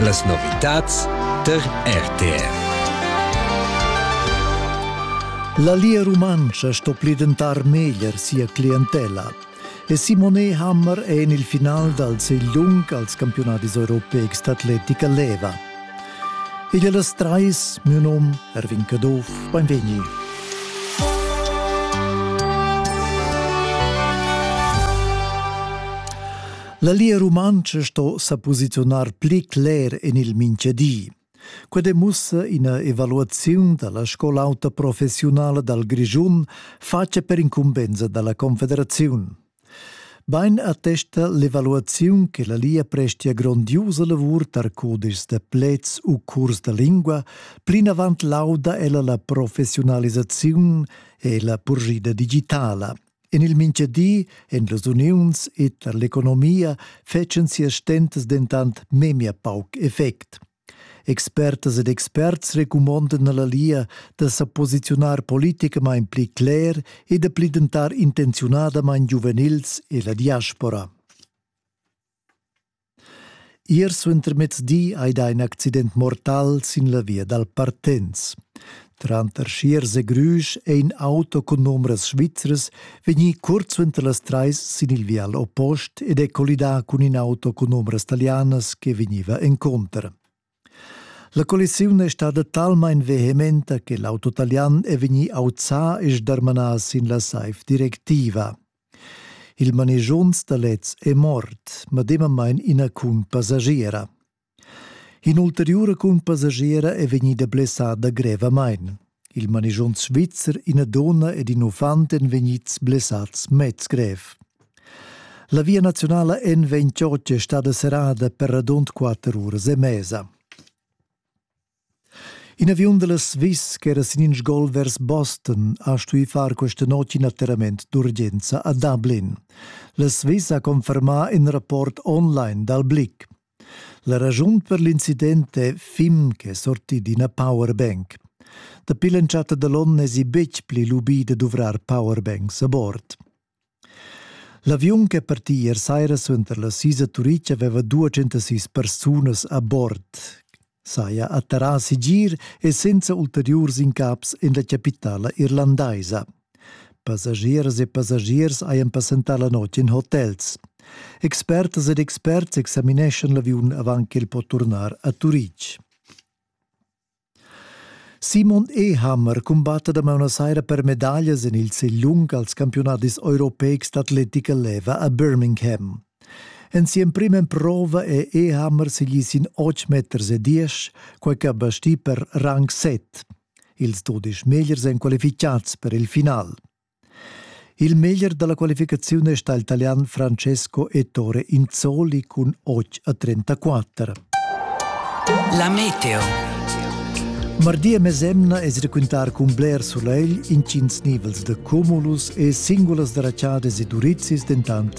Las novitads tar RTR. La Lia Rumantscha sto plidentar meglier sia clientella. E Simone Hammer è en il final dal segliung als campionadis europeics d'atletica leva. Igl è las trais, mio nom Erwin Caduff, benvegni. La Lia Rumantscha sto sa posiziunar pli cler en il mintgadi. Quel demussa ina evaluaziun da la scola auta professiunala dal Grischun fatta per incumbensa da la Confederaziun. Bein attesta l'evaluaziun che la Lia prestia grondiusa lavur tar codices da plets u curs da lingua, plinavant lauda ella la professiunalisaziun e la purgida digitala. En il mintgadi en las uniuns e tar l'economia fetschen sias stentas dentant memia pauc effect. Expertas ed experts recumondan alla Lia da sa posiziunar politicamain pli cler e da pli dentar intenziunadamain giuvenils e la diaspora. Ier suentermezdi ei dà in accident mortal sin la via dal Partenz. Tranter Schiers e Grüsch è in auto cun numbras svizras vegnì curt suenter las trais sin il vial oppost ed è collidà cun in auto cun numbras talianas che vegniva encunter. La collisiun è stada talmain vehementa che l'auto talian è vegnì auzà e sdarmanà sin la saiv directiva. Il manegiond da lez è mort, medemamain ina cunpassagiera. In'ulteriura cunpassagiera è vegnida blessada grevamain. Il manischont svizzer, ina donna ed in uffant èn vegnids blessads mez grev. La via nazionala en vegn Ciorce stada serrada per radund quatter uras e mesa. In aviun della Swiss che era sin in sgol vers Boston ha stuì far questa notte in atterrament d'urgenza a Dublin. La Swiss ha confermà in rapport online dal BLIC. La raschun per l'incident è Fim ch'è sortì d'ina powerbank. Dapi l'entschatta da l'onn n'èsi betg pli lubì da duvrar powerbanks a bord. L'aviun ch'è partì ier saira suenter la sisa Turic aveva 206 persunas a bord. saja atterrà segir e senza ulteriurs incaps en la chapitala irlandaisa. Passagieras e passagiers hajan passentà la notg in hotels. Expertas ed experts examineschan l'aviun avant ch'el po turnar a Turitg. Simon Ehammer cumbatta da mauna saira per medaglias en il segl lung als campiunadis europeics d'atletica leva a Birmingham. En si'emprima emprova è Ehammer segì sin otg meters e diesch, quai ch'ha bastì per rang set. Ils dudesch megliers èn qualificads per il final. Il meglier da la qualificaziun è stà il Italian Francesco Ettore Inzoli cun 8 a 34. La meteo. Mardi e mesemna es raquintar cun bler sulegl, intgins nivels de cumulus e singulas draciadas e durizzis dentant